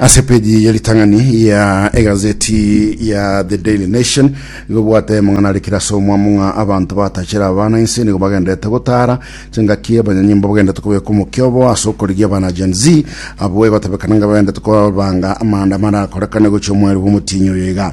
ase peji ya ritang'ani ya egazeti ya the daily nation igo bwate mong'ana arikire ase omwamo ng'a abanto batachera abana inse nigo bagenderete gotara chingaki abanyanyimbo bagenderete kobeka omokiobo ase okorigia abana gen z abo egotebekana ng'a bagenderete kobanga amanda marakorekane gochia omweri bwa omotinyi oyo iga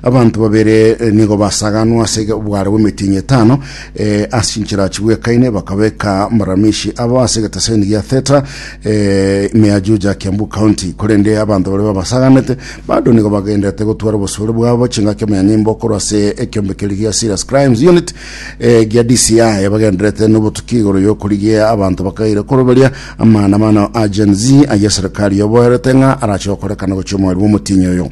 Abanto babere nigo basaganwa ase obware bw'emetienyi etano eh, ase chinchera chigwekaine, bakabeka amaramishi abo ase egeteseni gia theta eh, Meajuja, Kiambu County. Korende abanto baria babasaganete bado nigo bagenderete gotwara obosore bwabo chingaki omonyanyimbo korwa ase ekiombe keria gia Serious Crimes Unit eh, gia DCI bagenderete nobotuki igoro y'okorigia abanto bakaire koroberia amaandamano a Gen Z ayia serikali yoboerete ng'a arache gokorekana gochia omweri bw'omotienyi oyo.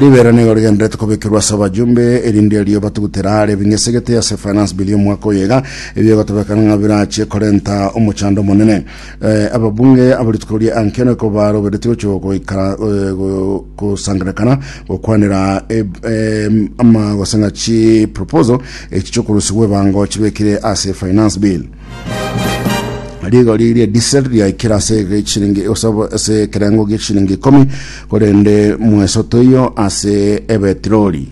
Ribero nigo rigenderete kobekerwa ase abajumbe erinde erio batugutera are bing'esegete ase finance bill y'omwaka oyega ebiogotebekana ng'a birache korenta omochando omonene Eh, ababunge abarituko ria ankeno iko baroberetie gochia goikara eh, go- gosangerekana gokwanera eb- em, ama gose ng'a chi proposal echi chiokorusigwa ebango chibekire ase finance bill rigori ria diesel riaikire ase echiringi osabo- ase ekerengo gie chiringi ikomi korende mwesoto iyo ase ebetirori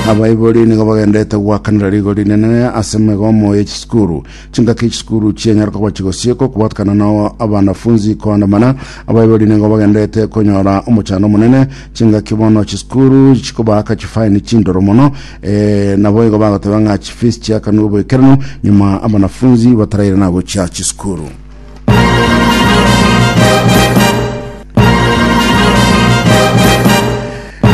abaibori nigo bagendete gwakanera rigo rinene ase migomo ya chisukuru chingaki chisukuru chienyaruka gwachi gosiekwa kobatukana na abanafunzi koandamana abaibori nigo bagendete konyora omochando omonene chingaki bono chisukuru chikobaaka chifaini chindoro mono Ee, naboigo bagoteba ng'a chifees chiakanwe oboikeranu nyuma abanafunzi bataraire nagochia chisukuru.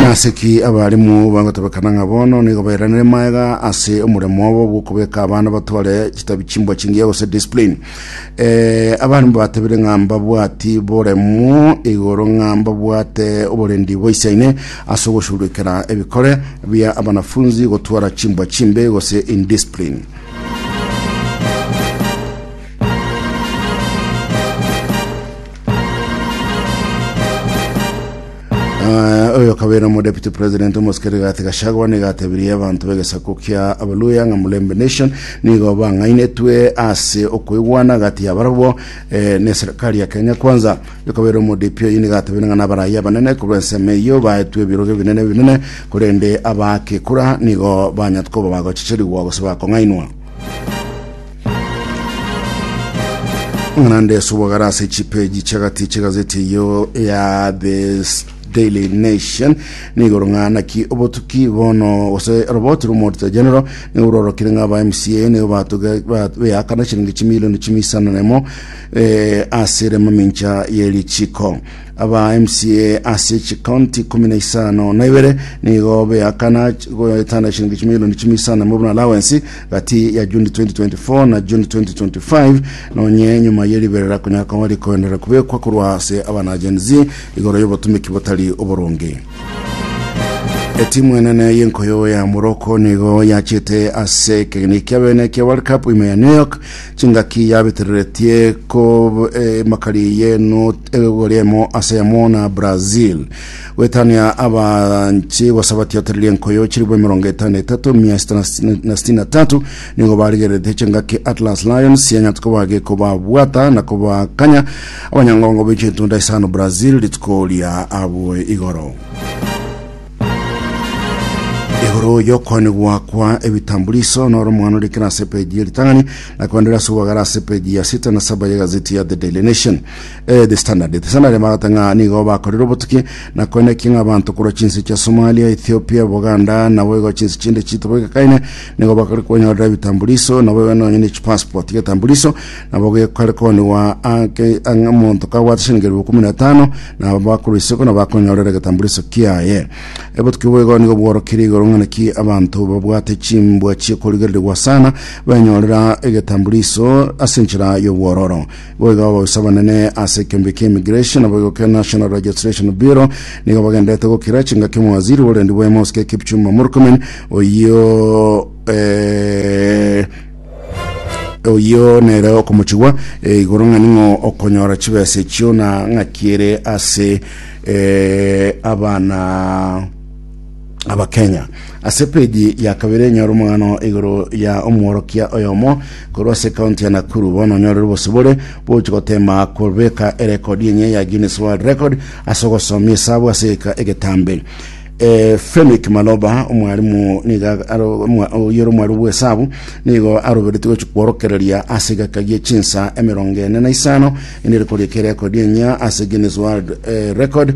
Naseki abarimu bagotebekana ng'a bono nigo bairanire maega ase omoremo obo bw'okobeka abana batware chitabi chimbwa chingiya gose discipline. Eh, abantu batebire ng'a mbabwati boremu igoro ng'a mbabwate oborendi boisaine ase ogoshururikera ebikore bia abanafunzi gotwara chimbwa chimbe gose indiscipline Ah, oyo kabere omo deputy president omosike Rigathi Gachagua nigo atebirie abanto b'egesaku kia Abaluya ng'a Mulembe Nation nigo bang'ainetwe ase okoigwana gati yabarabwo eh, ne serikali ya Kenya Kwanza. Oyo kabere omo DP oyi nigo atebirie ng'a nabaraia abanene korwa ensemo eyio baetwe ebirogo ebinene ebinene korende abaake kura nigo banyat koba bagochichirigwa gose bakong'ainwa. Ng'ana nde subagara ase chipeji chagati chegazeti eyo ya The Daily Nation nigoro ng'ana ki obotuki bono gose roboti romorita general nigo rorokire ng'a ba MCA nigo batoge beakana chiringi chimilioni chimisana nemo eh, ase rema mincha ye richiko aba MCA ase chikaunti kumi na isano na ibere nigo beakana goetana chiringi chimilioni chimisana nemo buna allowance gati ya June 2024 na June 2025, na onye nyuma ye riberera konya koba rikoenderera kubekwa korwa ase abana Gen Z igoro y'obotumeki botari oboronge. Etimu enene y'enkoyo ya Morocco nigo yachete ase ekegena ekia bene ekia World Cup ime ya New York chingaki yabitireretie ko eh, makari ye not egori emo ase yamo na Brazil. Goetania abanche gose abatiotereria enkoyo chilifu emerongo etano na etato mia sita na sitini- na sitini na tatu nigo barigererete chingaki Atlas Lions sianya tuko bage kobabwata na kobakanya abanyangongo be chintunda isano Brazil rituko ria abwo igoro igoro yokwanigwa kwa ebitambuliso noro omwana ore kera ase peji ya ritang'ani na kwendera ase obwagara ase peji ya sita na saba ya gazeti ya The Daily Nation Eh, The Standard. The Standard emagata ng'a nigo bakorire obotuki na koinakia ng'a abanto korwa chinse chia Somalia, Ethiopia, Buganda nabo igo chinse chinde chitobo igakaine nigo bakore konyorera ebitambuliso nabo igo nonye ne chipassport getambuliso nabo gekare koniwa ake ang'a omonto kabwate shilingi elfu kumi na tano nabo bakorwa isiko nabo bakonyorera egetambuliso kiaye obotuki obo igo nigo bworokire igoro ng'a naki abanto babwate chimbwa chiekorigereregwa sana benyorera egetambuliso ase enchera y'obwororo Bo iga abagusa abanene ase ekeombe kia Immigration na boigo kia National Registration Bureau nigo bagenderete gokira chingaki omowaziri b'oborendi bwaye Mosque Kipchumba Murkomen oyio eh, oyio nere okomochigwa eh, igoro ng'ani ng'o okonyora chibesa echio na ng'aki ere ase eh, abana Abakenya. Ase page ya kabere enyore omogano igoro ya omworokia oyomo korwa ase county ya Nakuru bono onyorere obosibore bwogochi gotema kobeka erekodi enye ya Guinness World Record ase ogosomia esabu ase egetambe eh, Femic Maloba omwarimu niga oyere omwarimu bw'esabu nigo aroberetie gochi kworokereria ase egeka gie chinsa emerongo ene na isano enere korieka erekodi enya ase Guinness World eh, Record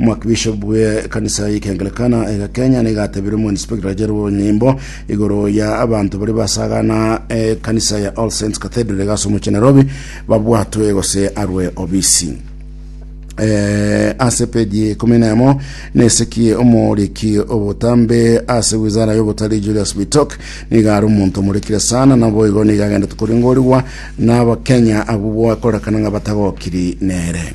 Omwakibishopu bw'ekanisa y'Ekeangelikana ega Kenya nigo atebirie omoinspekta Jerry Onyimbo igoro ya abanto baria basagana ekanisa ya All Saints Cathedral egase omochie Nairobi babwatwe gose arwe obisi. Eh, ase peji ikumi na emo nesiki omoriki obotambe ase wizara y'obotari Julius Bitok niga are omonto omorekire sana naboigo niga agendete koringorigwa na abakenya abwo akorekana ng'a batagokiri nere.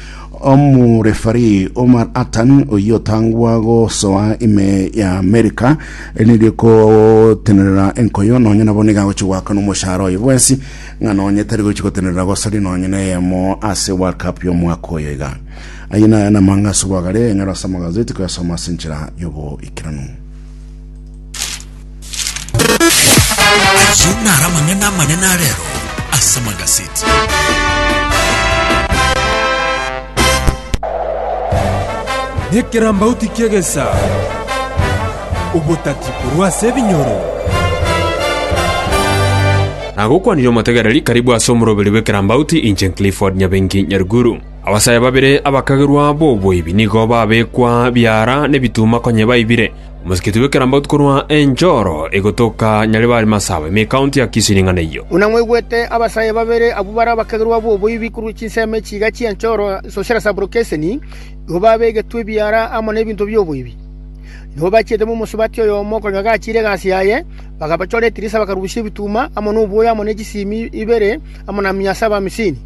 Omorefarii Omar Attan oyio otangwa gosoa ime ya Amerika nigo ekotenerera enkoyo nonye nabo nigo agochi goaka nomoshahara oye bwensi ng'a nonye tari gochi gotenerera gosaria nonye neyemo ase World Cup y'omwaka oyo iga. Ayio naye namang'a ase obwagare enyore ase amagazeti koyasoma ase enchera y'oboikeranu. Ayio naro amang'ana amanene a rero ase magaseti. Nekerambauti ki'egesa, obotati korwa ase ebinyoro. Nagokwanire omotegereri karibu ase omoroberi bw'ekerambauti inche Clifford Nyabengi Nyaruguru. Abasae babere abakagerwa b'oboibi nigo babekwa biara n'ebituma konye baibire, Omosikiti bw'ekerambe otikorwa enchoro egotoka Nyaribari Masawe, ime ekaunti ya Kisii ring'ana eyio. Buna mwaigwete, abasae babere abwo bare abakegerwa b'oboibi korwa chinsemo echiiga chi'enchoro, social sublocation, nigo babegetwe ebiara amo n'ebinto bi'oboibi. Nigo bachiete momosubati oyomo konya gachiire egasi yaye, bagabachora etirisa bakarusia ebituma amo nobwoya amo ne chisiimi ibere amo na mia saba amisini.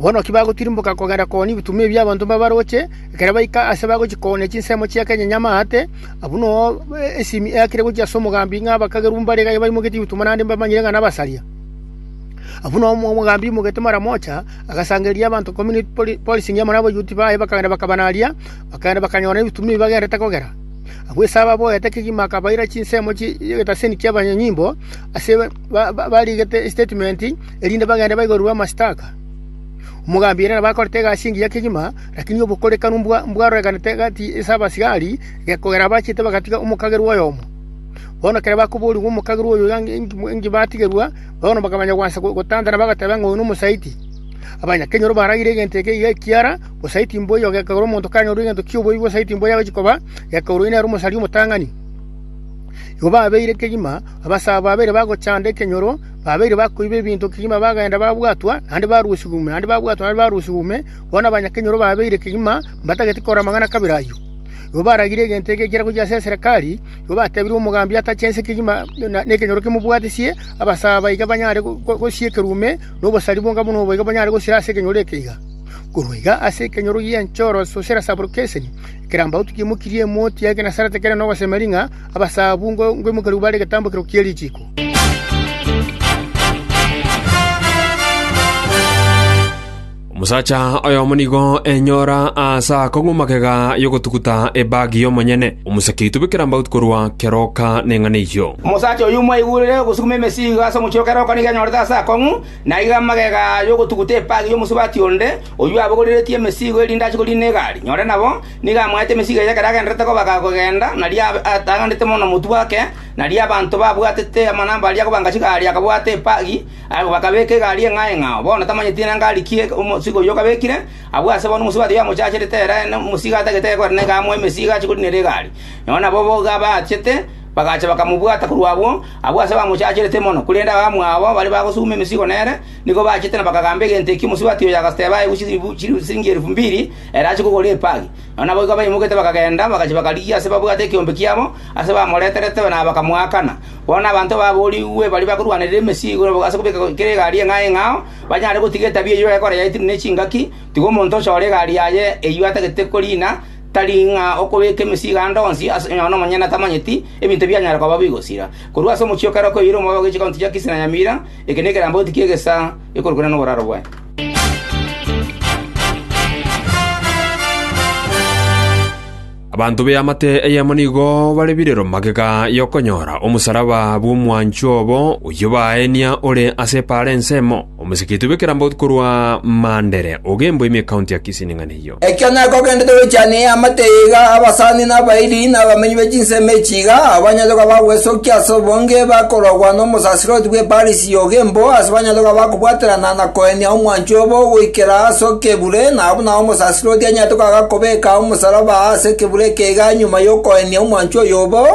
Bono ki bagotirimboka kogenda kooni ebituma ebi abanto mbabaroche, Ekero baika aase bagochia koonia chinsemo chi'ekenyenya amaate, abwo noyo esimi eakire gochia ase omogambi ng'a abakagerwa mbare iga baimoketie ebituma naende mbamanyire ng'a nabasaria. Abwo noyo omogambi aimoketie maramocha, agasangereria abanto ikomi ne polisi enyia amo nabayuoti baye, bakagenda bakabanaria, bakagenda bakanyora nebituma ebi bagenderete kogera. Agwo Esau aboete kegima akabaira chinsemo chi'egetaseni ki'abanyanyimbo ase barigete estatement, erinde bagende baigorirwe amashtaka. Omogambi ere nabo akorete egasi engiya kegima. Lakini obokorekano mbwarorekanete egati ase abasigari, gekogera abachete bagatiga omokagerwa oyomo. Bono ekero bakoborigwa omokagerwa oyo enki batigerwa, bono bakamanya goancha gotantana, bagateba ng'a oyo nomosaiti. Abanyakenyoro baragire egento eke iga ekiara, bosaiti mboiyo, gekogera omonto kanyorwa egento ki'oboibi bosaiti mboiyo agochia koba, gekogera oyio nere omosari omotang'ani. Igo babeire kegima, abasae aba babere bagochanda ekenyoro, babeire bakoiba ebinto kegima bagenda babwatwa, naende barusigwa ime, naende babwatwa, naende barusigwa ime, Bono abanyakenyoro baabeire kegima mbatagete korora amang'ana a kabere ayio. Igo baragire egento egekera gochia ase eserekari, igo bateebire omogambi atache ense kegima nekenyoro kemobwatisie, abasaa baiga banyare gosiekerwa ime, na obosari bonga buna obo iga bonyare gosira ase ekenyoro eke iga. Korwa iga ase ekenyoro gi'enchoro Susera Saburukeseni, ekerambagoto ki'emokiri emoti ya egenasarete kere nogosemeria ng'a abasaa abwo ngoimokerigwe bare egetambokero kie richiiko. Omosacha oyomo nigo enyora aase ako ng'u magega y'ogotuguta ebagi y'omonyene, omoseke itubekera mbauti korwa keroka neng'ana eyio. Omosacha oyio mwaigurire ogosuguma emesigo ase omochie o keroka nigo enyorete aase ako ng'u, na aiga amagega y'ogotuguta ebagi y'omosubati onde, oyio abogoreretie emesigo erinde ache koriina egari. Nyore nabo nigo amoete emesigo eye ekero agendererete kobaga kogenda, nario atang'anete mono motwe ake, nario abanto babwatete amanamba aria kobanga chigari akabwata ebagi, Abwo bakabeeka egari eng'ao eng'ao, bono tamanyeti nengari ki omosigo oyio okabekire. Agwo ase bono omosigo taiyo amochacharete ere omosigo atagete aya korende nigo amoa emesigo achie korinera egari. Nonya nabo boigo abaachete, bagacha bakamobwata korwa agwo, abwo ase bamochacharete mono. Korende abamwabo baria bagosuguma emesigo nere, nigo baachete na bakagamba egento ekio omosigo taiyo agateba aegwe chisiringi elifu mbiri ere achie kogora epagi. Nonya naboigo baimoketie bakagenda, bagachia bakarigia ase babwate ekeombe kiabo ase bamoreterete na bakamoakana. Bono abanto baboorigwe baria bakorwanerera emesigo nabo ase kobeka kera egari eng'ao eng'ao, banyare gotiga etabia eyio ekora yaetire ne chingaki. Tiga omonto onsi ore egari yaye eyio atagete koriina, tari ng'a okobeka emesigo ande onsi, onye nomonyene tamanyeti, ebinto bianyare koba bigosira. Korwa ase omochie o kera okoeire omoyo ogochia ekaunti ya Kisii na Nyamira, eke nekerambauti ki'egesaa ekorokwana noboraro bwaye. Abanto b'eamate eyemo nigo bare birero magega y'okonyora omosalaba bw'omwancho obo oyio baaenia ore ase epaara ensemo, omosekeiti bw'ekerambo korwa Mandere, ogembwa ime ekaunti ya Kisii ning'ana eyio. Ekio nekogendete goichania eamate eye iga, abasani, na abairi, na abamenyi be chinsemo echi iga, abanyachoka bagwesokia ase obonge, bakorogwa nomosaserdoti bw'epaara esinge. Sioka emboa ase abanyaroka bakobwaterana na koenia omwancho obo goikera ase okebure, na buna omosaserdoti anyarete koaga kobeka omosaraba ase ekebure eke iga nyuma y'okoenia omwancho oyo obo,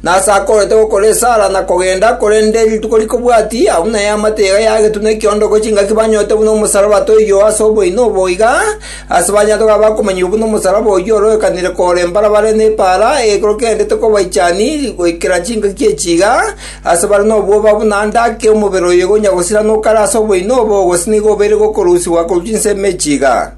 nase akorete gokora esara na kogenda, korende rituko rikobwati, abwo nayeamate iga yagetuna ekiondoko chingaki banyorete buna omosaraba toiyo ase oboino obo iga, ase abanyaroka bakomanyigwa buna omosaraba oyio ororekanire korembarabare nepaara, ekorokendete kobaichani goikera chingaki echi iga, Aase bare nobwoba buna ande ake omobere oye gonya gosirana okare ase oboino obo, gose nigo obeire gokorusigwa korwa chinsemo echi iga.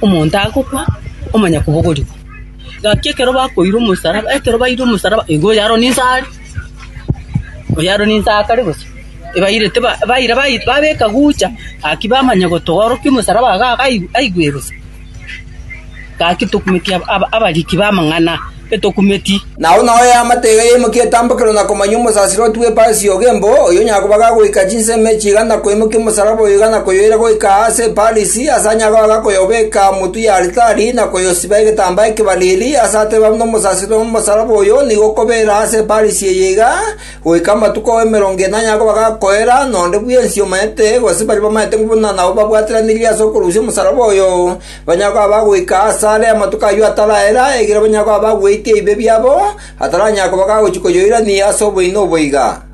Omonto agokwa, omanya kobogorigwa. Gaki ekero bakoira omosaraba, ekero baire omosaraba, igo oyo aro ninsa are, oyo aro ninsa akare bosa. Ebaire teba baira baira babeka gucha, gaki bamanya gotoorokia omosaraba iga iga aigwe aigwe bosa. Gaki tokumeti aba aba abariki b'amang'ana, etokumeti. Nao nao eamate eye yaimokia etambokero na komanyia omosasiro otugwe Paris ogo embo, oyio onyakoba gagoika chinsemo echi iga na koimokia omosaraba oyo iga na koyoira goika aa ase Paris. Tiyasanyaga koyobeka motwe y'alitari na koyosiba egetambaa ekebariri, aase ateba buna omosasitori omosalaba oyo, nigo kobeera ase Eparisi eye iga, goika amatuko emerongo enane akoba gakoera, nonde bwensi omanyete, gose baria bamanyete buna nabo babwateranirie ase okorusia omosalaba oyo, banyare koba bagoika aase are amatuko ayio ataraera, ekiagera banyare koba bagweite ebibe biabo, ataranyare koba gagochia koyoirania ase oboino obo iga.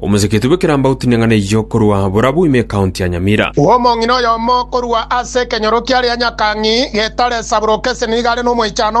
Omoseketu bw'ekerambagu tineng'ana eyio korwa Borabu ime ekaunti ya Nyamira. Omong'ina oyomo korwa ase ekenyoro kiaria Nyakang'i, getare Saburoke Senigare na omoichano